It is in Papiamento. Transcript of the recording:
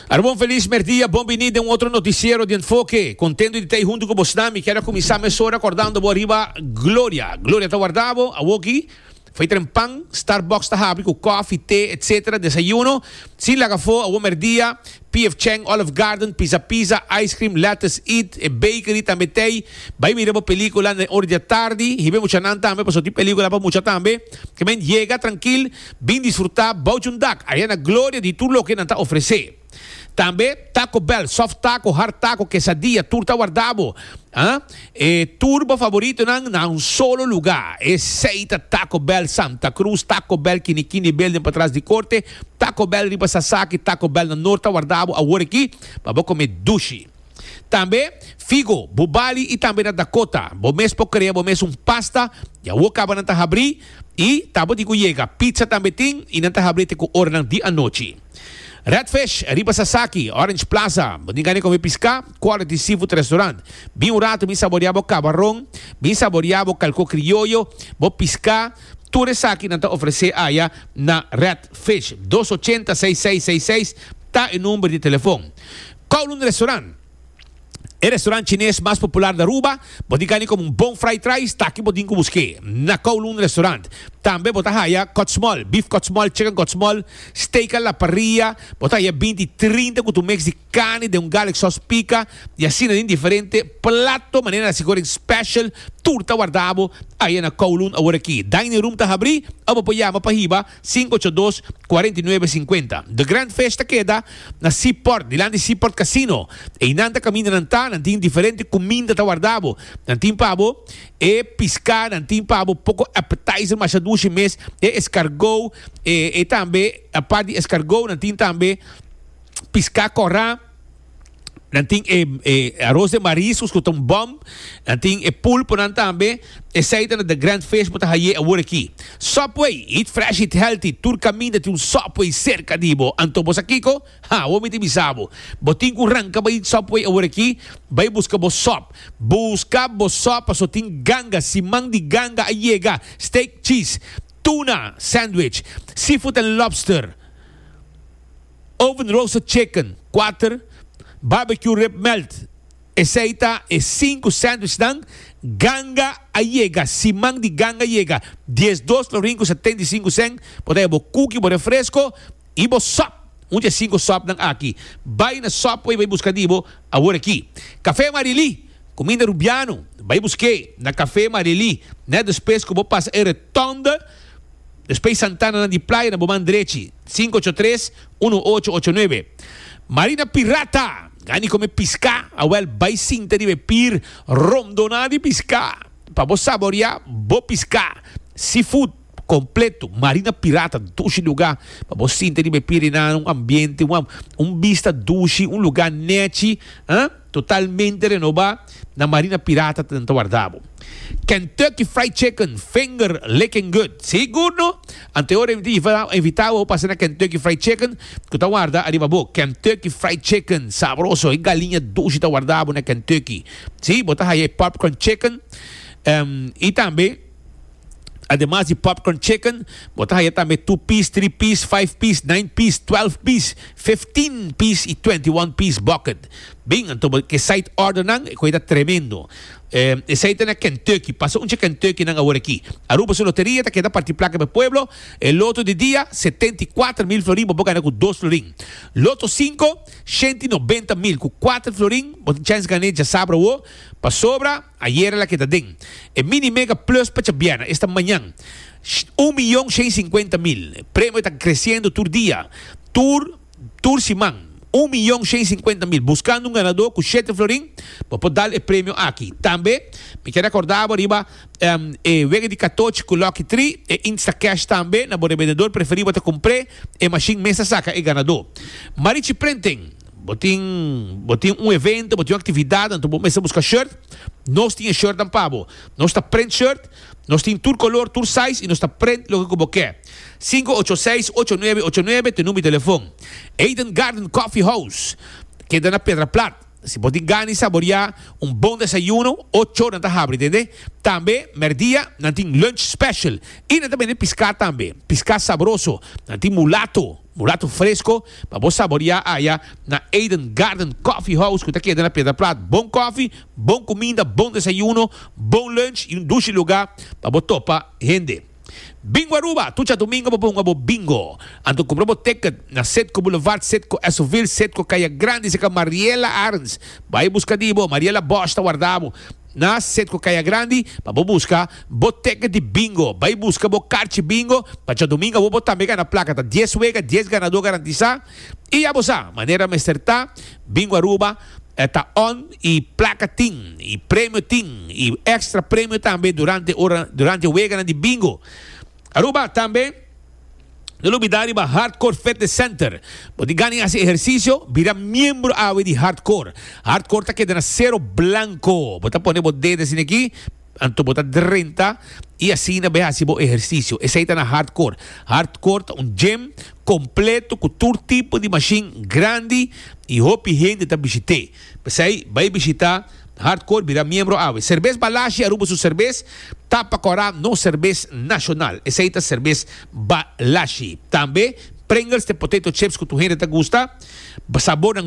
Arbon feliz merdia, bon bini den un otro noticiero di Enfoke. Contento di ta ei hunto cu bosnan. Mi kier a cuminsa mesora cordando bo riba Gloria. Gloria ta warda bo awoki. Fai tren pan, Starbucks ta habri cu coffee, thee, etc. Desayuno. Sin laga afo, awo merdia, PF Chang, Olive Garden, Pizza Pizza, Ice Cream, Lettuce Eat, e Bakery tambe ta ei. Bai mira bo pelicula na e ora di atardi. Hibe muchanan tambe, pasobra tin pelicula pa mucha tambe. Ke men yega trankil. Bin disfrutá bou dje un dak ayá na Gloria di tur loke nan ta ofresé. Tambe Taco Bell, soft taco, hard taco, quesadilla, tur ta wardá bo. E tur bo favoritonan na un solo lugá. Esei ta Taco Bell Santa Cruz, Taco Bell Kinikini Building patras di Korte, Taco Bell riba Sasaki, Taco Bell na Nort ta wardá bo awor aki pa bo komé dushi. Tambe Figo, Bubali i tambe na Dakota bo mes por krea bo mes un pasta di awor kaba nan ta habrí I tabo di ku yega. Pizza tambe tin i nan ta habri te ku oranan di anochi. Redfish riba Sasaki, Orange Plaza. Bo tin gana kome piská? Quality Seafood Restaurant. Bin un ratu, bin saboreá bo kabaron, bin saboreá bo kalkó krioyo, bo piská, tur esaki nan ta ofresé aya na Redfish. Dos ochenta, seis seis seis seis ta e number di telefon. Kowloon Restaurant. E restaurant chines mas popular na Aruba, bo tin kani komo un bon fried rice, ta aki bo tin ku busk'é, na Kowloon Restaurant. Tambe bo ta haya kòtsmòl, bif kòtsmòl, chicken kòtsmòl, steak a la parrilla, bo ta haya binti trinta ku tu mix di carne den un garlic sauce pica, i asina den diferente plato manera nasi Goreng Special, tur ta wardabo aya na Kowloon aworakí. Dining room ta habrí, abo por yama pa hiba. Sin ocho dos, cuarenta y nuebe, cincuenta. The Grand Fish ta keda na Seaport, dilan di Seaport Casino. Einan ta kaminda nan ta, nan tin diferente kuminda ta warda bo. Nan tin pa bo e piská, nan tin pa bo poko appetizer masha dushi mes, e escargot, e tambe apart di escargot nan tin tambe piská kòrá. Nan tin e, e arroz de mariscos cu ta un bom. Nan tin e pulponan tambe. Esey ta na the grand fish bo ta haye awor aki. Subway, eat fresh, eat healthy. Tur caminda tin un Subway cerca di bo. Anto bo sa kico? Ha, awor mi ta bisa bo. Bo tin cu ranca bay eat Subway awor aki. Bay busca bo sub. Busca bo sub pasobra tin ganga, siman di ganga a yega. Steak, cheese, tuna, sandwich, seafood and lobster. Oven roasted chicken, kuater, Barbecue rib melt, esei ta e sinku sandwichnan, Ganga a yega, siman di ganga a yega, dies dos florin ku setenta i sinku sèn, bo ta e bo kuki, bo refresko i bo sòp, un dje sinku sòpnan aki, bai na Subway bai buska di bo awor aki. Kafé Marily, kuminda Rubiano, bai busk'é na Kafé Marily nèt despues ku bo pasa e. Thunder, Despey Santana nan di Playa na Boman drechi, sinku ocho tres, unu ocho ocho nuebe. Marina Pirata, Gani come pisca, awel bay sinta riba e pier romdona di pisca pa bo saboria bo pisca. Seafood completo, Marina Pirata, dushi luga pa bo sinta riba e pier enano, un ambiente, un vista dushi, un luga nechi, eh. Totalmente renobá na Marina Pirata ta den ta warda bo. Kentucky Fried Chicken, finger licking good. Sí good no? Ante ora mi ta invitá bo pa sina Kentucky Fried Chicken ku ta warda ariba bo. Kentucky Fried Chicken, sabroso. E galiña dushi ta warda bo na Kentucky. Sí, bo ta haya e Popcorn Chicken, i tambe. Ademas di popcorn chicken, bo ta haya tambe two piece, three piece, five piece, nine piece, twelve piece, fifteen piece y twenty one piece bucket. Bien, anto bo ke side ordernan, e koi ta tremendo. Eh, esei ta na Kentucky. Pasa un che Kentuckynan awor aki. Aruba su loteria ta keda parti placa p'e pueblo. E loto di dia, setenta y kuater mil florin, bo por gana cu dos florin. Loto cinco, shente y nobenta mil. Cu kuater florin, bo tin chance gané djasabra awo. Pasobra. Ayera la keda den e Mini Mega Plus pa Chabiana, esta mañan, un miyon shen sinkuenta mil. E premio ta kresiendo tur dia, tur tur siman. Un miyon shen sinkuenta mil. Buskando un ganadó ku shete florin, bo por dal e premio aki. Tambe mi ke rekorda bo riba e wega di katochi ku Lucky Tri, e Instacash tambe na bo rebendedor preferí bo ta kumpr'é e mashin mes ta saka e ganadó. Marichi Prenten. Bo tin bo tin un evento, bo tin un actividad anto bo mester busca shirt, nos tin e shirtnan pa bo. Nos ta print shirt, nos tin tur color, tur size y nos ta print loke cu bo ke. Sinku ocho seis ocho nuebe ocho nuebe t'e number di telefon. Eden Garden Coffee House keda na Pedra Plat. Si bo tin gana di saboria un bon desayuno, ocho ora nan ta habri, tende. Tambe merdia nan tin lunch special y nan ta bende pisca tambe. Pisca sabroso, nan tin mulato, mulato fresco. Pa bo saborea aya na Eden Garden Coffee House cu ta keda na Piedra Plat. Bon koffie, bon cuminda, bon desayuno, bon lunch y un dushi lugar pa bo topa hende. Bingo Aruba, Tucha domingo bo por hunga bo bingo. Anto cumpra bo ticket na Citgo Boulevard, Citgo Esoville, Citgo Caya Grande, Citgo Mariela Arns. Bay busca di bo, Mariela Bosch ta warda bo. Na set cu caya grandi pa bo busca bo ticket di bingo. Bay busca bo carchi bingo pa djadomingo awo bo tambe gana placa. Ta dies wega, dies ganador garantisa. Y ya bo sa manera mester ta. Bingo Aruba ta on y placa tin y premio tin y extra premio tambe durante ora durante weganan di bingo Aruba tambe. No lo bida riba Hardcore Fitness Center. Bo tin gana di hasi ehersisio? Bira miembro awe di Hardcore. Hardcore ta keda na sero blanko. Bo ta pone bo dede asina aki, anto bo ta drenta i asina bo e hasi bo ehersisio. Esei ta na Hardcore. Hardcore ta un gym kompleto ku tur tipo di mashin grandi i hopi hende ta bishit'é. P'esei, bai bishitá Hardcore bira miembro awe. Serbes Balashi, Aruba su serbes ta pa kòrá nos serbes nashonal. Esei ta serbes Balashi. Tambe Pringles te potato chips ku tur hende ta gusta. Sabornan.